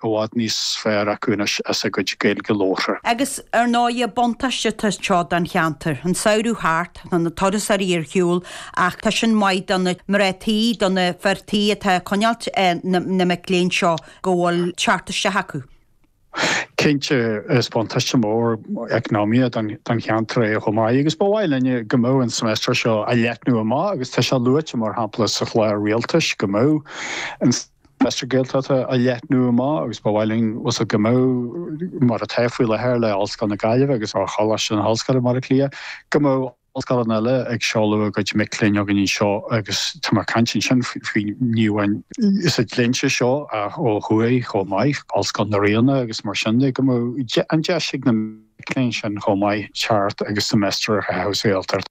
i bhfad níos fearr acu anois as a gcuid Gaeilge labhartha. Agus, ar ndóighe, buntáistí atá anseo don cheantar. An samhradh thart, tá na turasóirí ar shiúl, ach tá sin maith do na mná tí, do na fir tí atá ag coinneáilt na mic léinn seo go bhfuil teacht isteach acu. Cinnte, is buntáiste mór eacnamaíoch don cheantar é chomh maith, agus ba mhaith linne go mbeadh an seimeastar seo á leathnú amach, agus tá sé luaite, mar shampla, sa chlár rialtais go mbeadh an. seimeastar Gaeltachta a leathnú amach agus ba mhaith linn, just, go mbeadh, mar atá faoi láthair le Ollscoil na Gaillimhe agus le Coláiste na hOllscoile Bhaile Átha Cliath, go mbeadh ollscoileanna eile ag seoladh a gcuid mic léinn againn anseo agus tá mé ag caint ansin faoi ní amháin sa dlínse seo ach ó thuaidh chomh maith, Ollscoil na Ríona agus mar sin de, go mbeadh an deis ag na mic léinn sin chomh maith teacht agus semester a chaitheamh sa Ghaeltacht.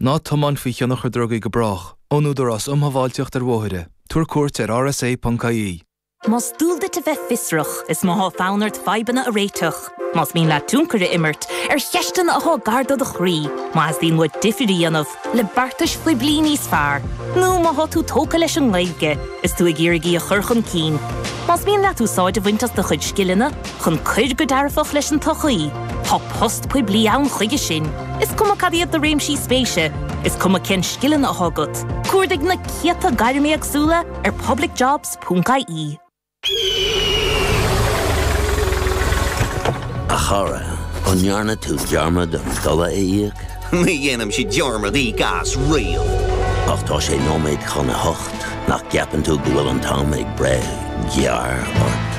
Ná tiomáin faoi thionchar drugaí go brách. Ón Údarás Um Shábháilteacht ar Bhóithre. Tabhair cuairt ar rsa.ie. Más dual duit a bheith fiosrach, is má thá fonn ort fadhbanna a réiteach, más mian leat tionchar a imirt ar cheisteanna athá gar do do chroí, má theastaíonn uait difir a dhéanamh le beartais phoiblí níos fearr, nó má thá tú tógtha leis an nGaeilge is tú ag iarraidh í a chur chun cinn, más mian leat úsáid a bhaint as do chuid scileanna, chun cur go dearfach leis an tsochaí. Tá post poiblí ann chuige sin, is cuma cad iad do réimsí spéise, is cuma cén scileanna athá agat, cuardaigh na céadta gairm éagsúla ar publicjobs.ie. A chara, an ndearna tú dearmad an dola a íoc? Ní dhéanaimse dearmad íoc as riamh. Ach tá sé nóiméad chun a hocht, nach gceapann tú go bhfuil an t-am ag breith gearr ort?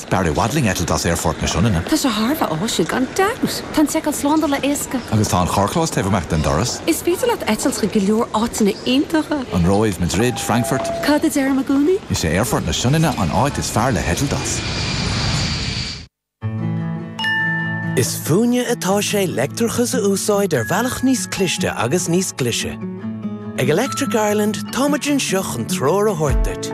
B'fhearr i bhfad linn eitilt as Aerfort na Sionainne. Tá sé thar a bheith áisiúil, gan dabht! Tá an tseiceáil slándála éasca. Agus tá an carrchlós taobh amach den doras. Is féidir leat eitilt chuig go leor áiteanna iontacha. An Róimh, Madrid, Frankfurt. Cad a deirim i gcónaí? Is é Aerfort na Sionainne an áit is fearr le heitilt as. Is fúinne atá sé leictreachas a úsáid ar bhealach níos cliste agus níos glaise. Ag Electric Ireland, táimid anseo chun treoir a thabhairt duit.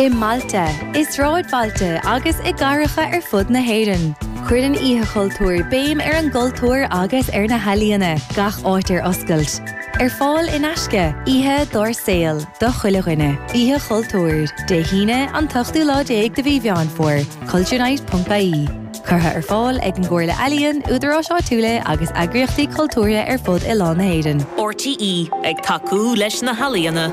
I mbailte, i sráidbhailte agus i gcathracha ar fud na hÉireann, cuireann Oíche Chultúir béim ar an gcultúr agus ar na healaíona, gach áit ar oscailt ar fad in aisce, oíche dár saol do chuile dhuine. Oíche Chultúir, Dé hAoine, an t-ochtú lá déag de mhí Mheán Fómhair, culturenight.ie. Curtha ar fáil ag an gComhairle Ealaíon, Údaráis Áitiúla agus eagraíochtaí cultúrtha ar fud oileán na hÉireann. RTÉ ag tacú leis na healaíona.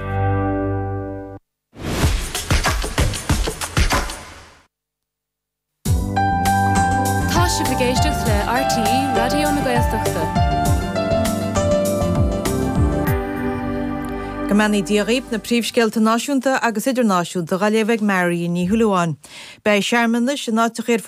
Tá sibh ag éisteacht le RTÉ Raidió na Gaeltachta. Go mbeannaí Dia dhaoibh na príomhscéalta náisiúnta agus idirnáisiúnta dá léamh ag Marion Ní Shúilleabháin. Beidh searmanais in áiteachaí ar.